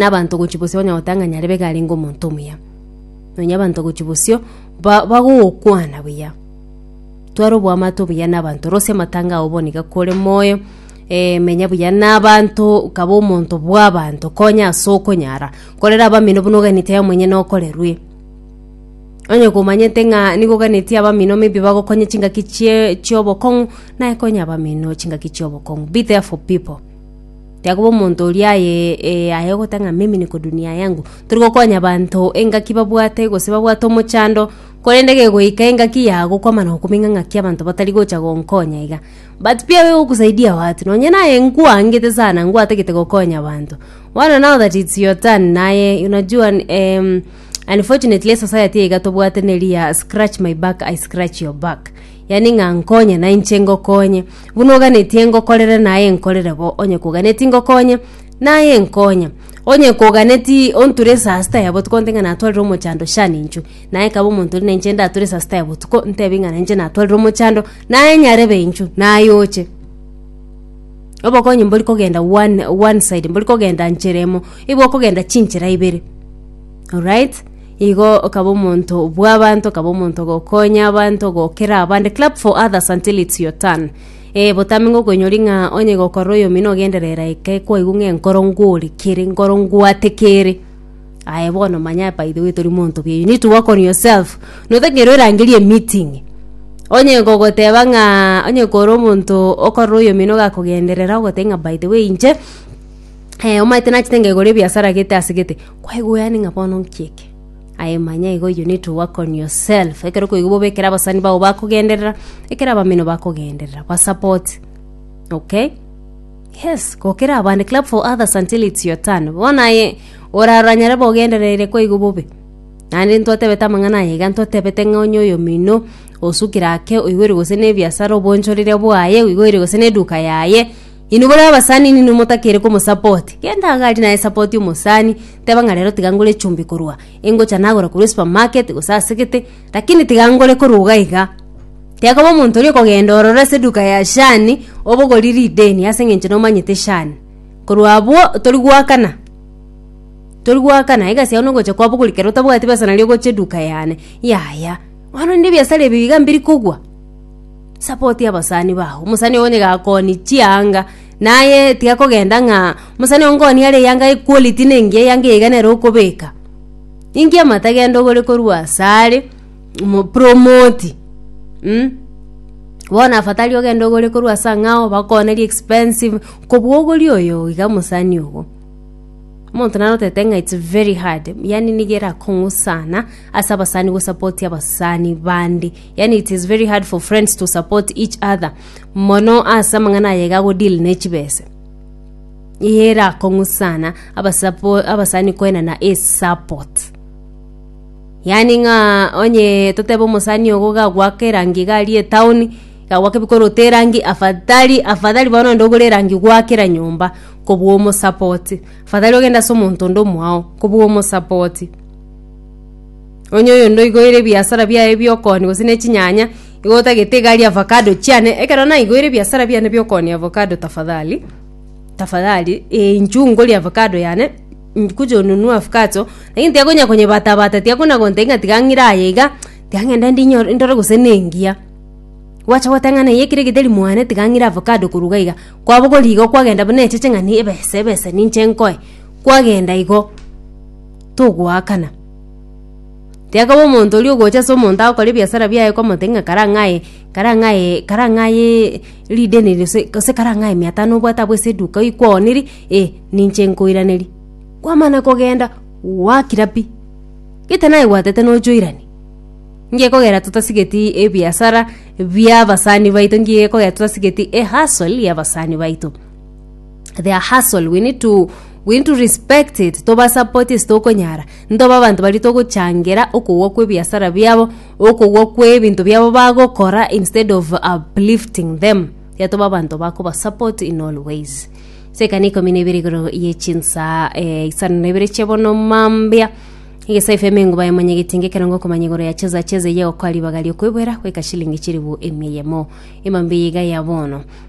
na abanto gochia bosio banya gotang'ani arebe iga arenge omonto omuya. Nonya abanto gochia bosio ba- bagogokwana buya. Tware oboamate obuya na abanto, rosia amatanga ao bono iga kore moyo, eh, menya buya na abanto, kaba omonto bwa abanto, konya ase okonyara, korera abamino buna oganeti aye monyene okorerwe. Onye komanyete ng'a nigo oganeti abamino maybe bagokonye chingaki chie chiobokong'u, naye konya abamino chingaki chiobokong'u, be there for people. Yakoba omonto oria aye eh, aye ogota ng'a mimi niko dunia yangu tori gokonya abanto engaki babwate gose babwate omochando korende gegoika engaki yago kwamana gokumenya ng'aki abanto batari gocha gonkonya iga but pi abe gokusaidia watu nonye naye nkwangete sana nkwatagete gokonya abanto bono now that it's your turn naye unajua em, unfortunately society iga tobwate na eria scratch my back I scratch your back yaani ng'a nkonye na inche ngokonye, buna oganetie ngokorere naye nkorere bo, onye koganeti ngokonye naye nkonye, onye koganeti onture esasita ya botuko onte ng'a natwarire omochando shani inchwe, naye kaba omonto oria na inche ndature esasita ya botuko ntebie ng'a na inche natwarire omochando naye nyarebe inchwe naye oche. Obokonyi mbori kogenda one one side mbori kogenda nchera emo, igo okogenda chinchera ibere, alright. Igo okaba omonto bw'abanto, okaba omonto ogokonya abanto, ogokera abande. Clap for others until it's your turn. Eh, botambe ng'a okoinyori ng'a onye gokorora oyomino ogenderera eke kwaigwa ng'a enkoro ngori kere, enkoro ngwate kere. Aye bono manya by the way tori monto buya, you need to work on yourself. Notagera orangerie emeeting, onye gogoteba ng'a onye kore omonto okorora oyomino gakogenderera ogoteba ng'a by the way inche, eh, omaete nachete ng'a igoro ebiasara gete ase gete kwaigweani ng'a bono nki eke aye manya igo you need to work on yourself ekero okoigwa bobe ekero abasani bao bakogenderera ekero abamino bakogenderera basupport okay yes gokera abande clap for others until it's your turn bono aye orarora nyare bobe ogendereire kwaigwa bobe naende ntwatebete amang'ana aya iga ntwatebete ng'a onye oyomino osukire ake oigoire gose na ebiasara obonchorire bwaye oigoire gose na eduka yaye Inwe buna abasani ninwe motakere komosapoti. Genda iga aria naye sapoti omosani, teba ng'a rero tiga ngore echumbi korwa engocha nagora korwa esupermarket gose asegete, lakini tiga ngore korwa iga iga. Tekoba omonto oria okogenda ororo ase eduka ya shani, obogori rideni ase eng'encho nomanyete shani. Korwa abwo tori goakana, tori goakana, egasi yao nogocha kwabogori kero otabwati besa nario ogocha eduka yane, yaya. Bono rende ebiasara ebi iga mbiri kogwa. Sapoti abasani bao. Omusani ogo onye gakoni chianga naye tiga kogenda ng'a omusani ogo nkoni are eyanga ye quality nengiya eyanga iga nere okobeka. Ninki amate genda ogore korwa asare omo promote mh bono afadhali ogende ogore korwa ase angao bakone ri expensive kobua ogori oyo iga mosani ogo. Omonto naro otagete ng'a it's very hard yaani niga erakong'u sana ase abasani gosapoti abasani bande. Yaani it is very hard for friends to support each other mono ase amang'ana aye iga agodeal ne chibese eye erakong'u sana abasapo- abasani koenana esupport yaani ng'a onye totebe omosani ogo iga agoaka erangi iga aria etown iga agoaka ebikoro ote erangi afadhali afadhali bono onde ogore erangi gwaakera nyomba kobua omosapoti afadhali ogende ase omonto onde omwao kobua omosapoti. Onye oyonde oigoire ebiasara biaye ebiokooni gose ne chinyanya, igo otagete igari avocado chiane, ekero naigoire ebiasara biane biokooni avocado tafadhali, tafadhali, eh, inchuo ngorie avocado yane, nkuja onunue avocado, lakini tiakonya konyebatabata, tiakona gontebia ng'a tiga ng'ire aye iga, tiga ng'ende ndinyore ndore gose nengiya. Gwacha goteba ng'a neyio ekero egete rimwane tiga ng'ire avocado korwa iga iga, kwabogora igo kwagenda buna echeche ng'a ni ebese ebese ninche nkoe, kwagenda igo, togoakana. Tiakaba omonto oria ogocha ase omonto agokora ebiasara biaye komotebia ng'a kara ng'ae kara ng'ae kara ng'ayee rideni ri gose gose kara ng'ae mia tano obwate abwo ase eduka oyio kwaoniri eh ninche nkoiraneria. Kwamana kogenda gwakira pi gete naye gwatete nocha oirane. Nge kogera totasigeti ebiasara bia abasani baito nge kogera totasigeti ehustle ya abasani baito. their hustle we need to we need to respect it tobasapoti ase tokonyara ntoba abanto baria togochangera okogwa kwa ebiasara biabo okogwa kwa ebinto biabo bagokora instead of uplifting them iga toba abanto bakobasapoti in all ways ase ekana ikomi na ibere igoro ye chinsa eh, isano na ibere chia bono mambia egesa fm enguba ya manyegetinga ekerongo okomanya igoro ya cheza cheza iye gokwa ribaga riokwebwera goika shilingi chiribu emia yemo emambia iga ya bono